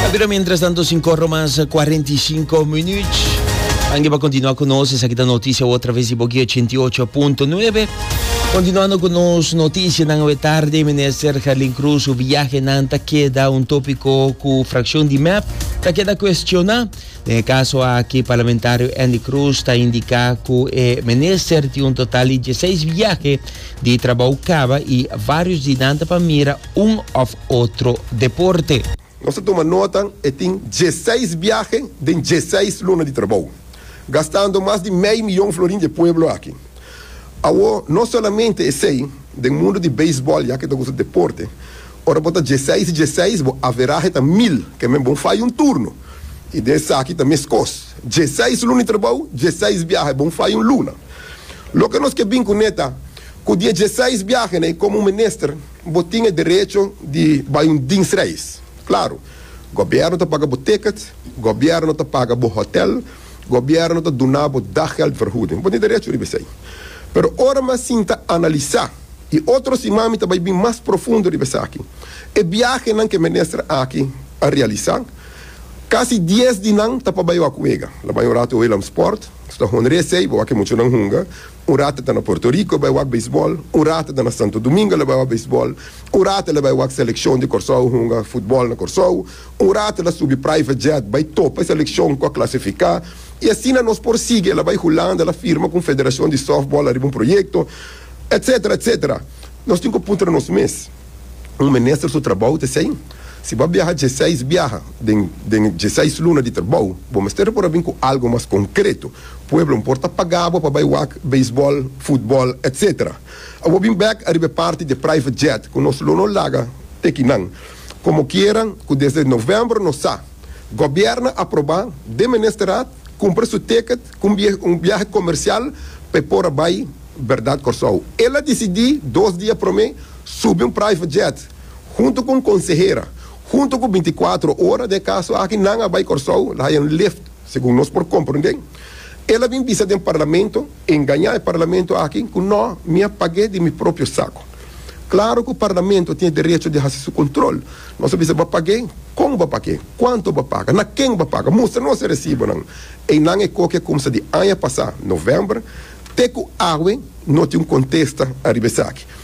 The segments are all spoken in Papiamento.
Ta bira mientras tanto sin corro mas 45 minuut. Ange pa continua con nos, esa kita noticia o través di Boki 88.9. Continuando con nos noticia nan we tarde, minister Gerlin Cruz, su viaje nan ta queda un tópico cu fracción di MEP ta queda cuestiona. Den e caso aki, parlamentario Andy Cruz ta indica cu e minister tin un total di 16 viaje di trabao caba y varios di nan ta pa mira un òf otro deporte. Nos a tuma nota e tin dieseis biahe den dieseis luna di trabou, gastando mas di mei miyon florin di e pueblo aki. Awor, no solamente esei, den mundu di beisbòl ya ke ta kusa deporte, ora bo ta dieseis i dieseis bo averahe ta mil, ke men bon fai un turno, i den esaki ta meskos, dieseis luna di trabou, dieseis biahe, bon fai un luna. Loke nos ke bin kuné ta, ku di e dieseis biahenan i komo un minister, Bo tin e derecho di bai un dinsreis. Claro, gobierno ta paga bo ticket, gobierno ta paga bo hotel, gobierno ta duna bo daggeldvergoeding. Bo tin derecho riba esei. Pero ora m'a sinta analisa, i otro siman mi ta bai bin mas profundo riba esaki. E biahenan ke minister aki a realisa, casi dies di nan ta pa bai wak wega. Lo bai un rato Willemsport, Honresei, bo wak e muchanan hunga. Un rata ta na Puerto Rico bai wak beisbòl, un rata ta na Santo Domingo la bai wak beisbòl, un rata la bai wak selekshon di Kòrsou hunga futbòl na Kòrsou, un rata la subi private jet bai topa e selekshon ku a klasifiká, i asina nos por sigui. E la bai Hulanda, el a firma ku un federashon di sòftbòl ariba un proyekto, etsetera, etsetera. Nos tin ku puntra nos mes. un minister su trabou ta esei. Si bo a biaha dieseis biaha den den e dieseis luna di trabou, bo mester por a bin ku algu mas konkreto. Pueblo no por ta pagá bo pa bai wak beisbòl, futbòl, etc. Abo bin bèk ariba e parti di e private jet ku nos lo no laga teki nan. Komokiera ku desde novèmbro nos sa gobièrnu a aprobá den ministerat kumpra su ticket ku un biaha komersial pa e por a bai. Berdad Kòrsou. El a disidí dos dia promé subi un private jet huntu ku un konsehera, huntu ku binti kuatro ora den e kaso aki nan a bai Kòrsou, el a haña un lift, segun nos por komprondé. El a bin bisa den parlamento, engañá e parlamento aki ku nò mi a pag'é di mi propio sako. Klaru ku parlamento tin e derecho di hasi su kontrol, nos a bisa, Bo a pag'é? Kon bo a pag'é? Kuantu bo a paga? Na ken bo a paga? Mustra nos e resibonan. Einan e koke a kumsa di aña pasá, novèmber, Te ku awe no tin un kontesta ariba esaki.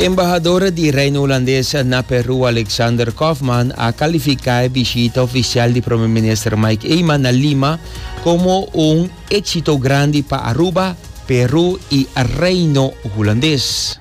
Embahador di Reino Hulandes na Peru Alexander Kaufman a kalifiká e bishita ofisial di Prome Minister Mike Eman na Lima komo un éksito grandi pa Aruba, Peru i Reino Hulandes.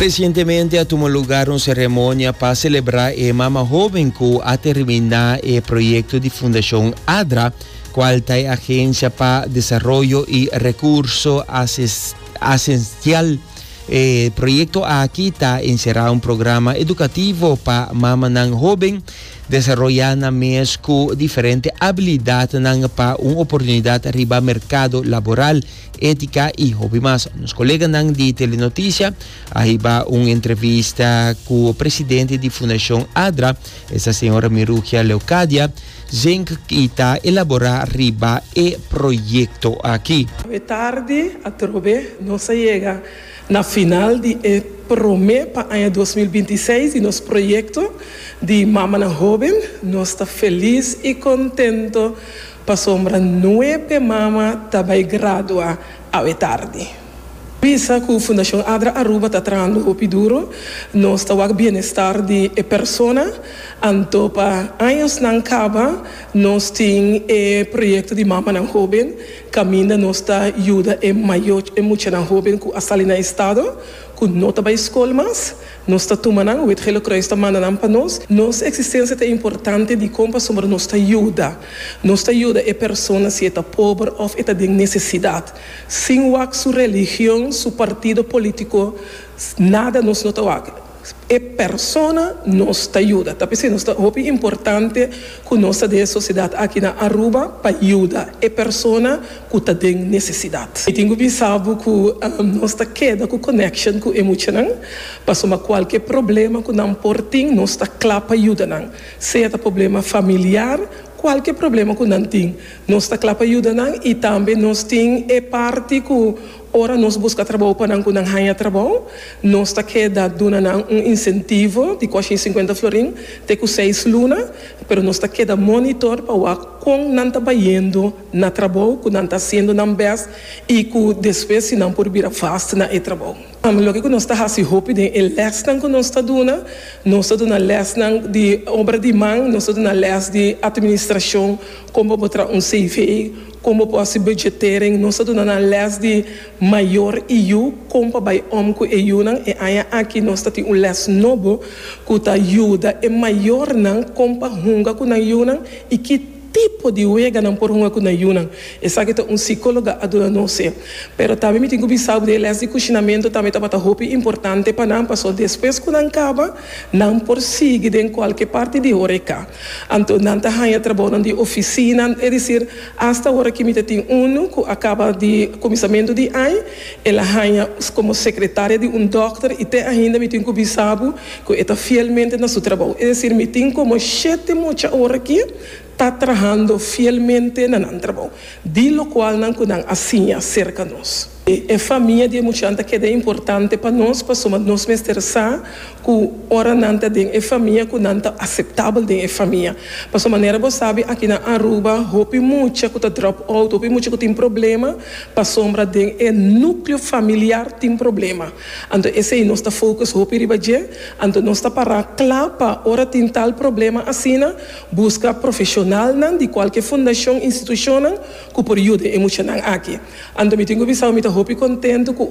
Resientemente a tuma lugar un seremonia pa celebra e mama hoben cu a termina e proyecto di Fundacion ADRA, cual ta e agencia pa desaroyo y recurso asistencial. E proyekto aki ta enserá un programa edukativo pa mamanan hóben desaroyá nan mes ku diferente abilidatnan pa un oportunidat riba merkado laboral. Etika i hopi mas. Nos koleganan di Telenoticia a hiba un entrevista ku presidente di Fundashon ADRA, esta señora Mirugia Leucadia, Zinc y ta elabora riba e proyecto aki. E tardi atrobe nos a yega na final di e prome pa aña dos mil binti i seis di nos proyecto di Mamanan Hoben. Nos ta felis y contento pasobra nuebe mama ta bay gradua awe tardi. Bisa cu Fundacion Adra Aruba ta trahando hopi duro, nos ta wak bienestar di e persona, anto pa añosnan caba nos tin e proyecto di Mamanan Hoben, caminda nos ta yuda e mayo e muchanan hoben cu a sali na estado, cu no ta bay scol mas, nos ta tuma nan, Wit Gele Croix ta manda nan pa nos. Nos existencia ta importante dicon pasobra nos ta yuda, nos ta yuda e persona si e ta pober of e ta den necesidad. Sin wak su religion, su partido politico, nada nos no ta wak. E persona nos ta yuda. Ta p'esei nos ta hopi importante cu nos ta den e sociedad aki na Aruba pa yuda e persona cu ta den necesidad. Mi tin cu bisa bo cu nos ta keda cu connection cu e muchanan, pasobra cualkier problema cu nan por tin nos ta cla pa yuda nan, sea ta problema familiar, cualkier problema cu nan tin, Nos ta kla pa yuda nan i tambe nos tin e parti ku ora nos buska trabou pa nan ku nan haña trabou, nos ta keda duna nan un insentivo di kòrshin sinkuenta florin te ku seis luna, pero nos ta keda monitor pa wak kon nan ta bayendo na trabou, ku nan ta hasiendo nan bèst i ku despues si nan por bira vast na e trabou. Loke ku nos ta hasi hopi den e lèsnan ku nos ta duna, nos ta duna lèsnan di obra di man, nos ta duna lès di atministrashon, Kon bo por traha un CV, kon bo por hasi budgetering. Nos a duna nan lès di mayor y yu kon pa bai om cu e yunan. E aña aki nos ta tin un lès nobo cu ta yuda e mayornan kon pa hunga cu nan yunan y ki tipo di wega nan por hunga cu nan yunan. Esaki ta un psicologa a duna nos e. Pero tambe mi tin cu bisa bo di e lès di cushinamento tambe tabata hopi importante pa nan, pasobra despues cu nan caba, Nan por sigui den kualke parti di Horeca. Anto nan ta haña trabaonan di ofisina, e disir asta ora ki mi ta tin unu ku a kaba di kuminsamentu di ai, el a haña komo sekretaria di un dòkter i te ainda mi tin ku bisa bo ku e ta fielmente na su trabou. E disir mi tin komo shete mucha ora ki. ta trahando fielmente na nan trabou, di lokual nan ku nan a siña serka nos. E famia di e muchanan ta keda importante pa nos, pasobra nos mester sa ku ora nan ta den e famia ku nan ta aseptabel den e famia. Pasobra manera bo sabi aki na Aruba hopi mucha ku ta drop out, hopi mucha ku tin problema pasobra den e nukleo familiar tin problema. Anto esei nos ta focus hopi riba dje, anto nos ta para kla pa ora tin tal problema asina, Buska profeshonalnan di kualke fundashon, institushonnan ku por yuda e muchanan aki. Anto mi tin ku bisa bo mi ta hopi kontentu ku.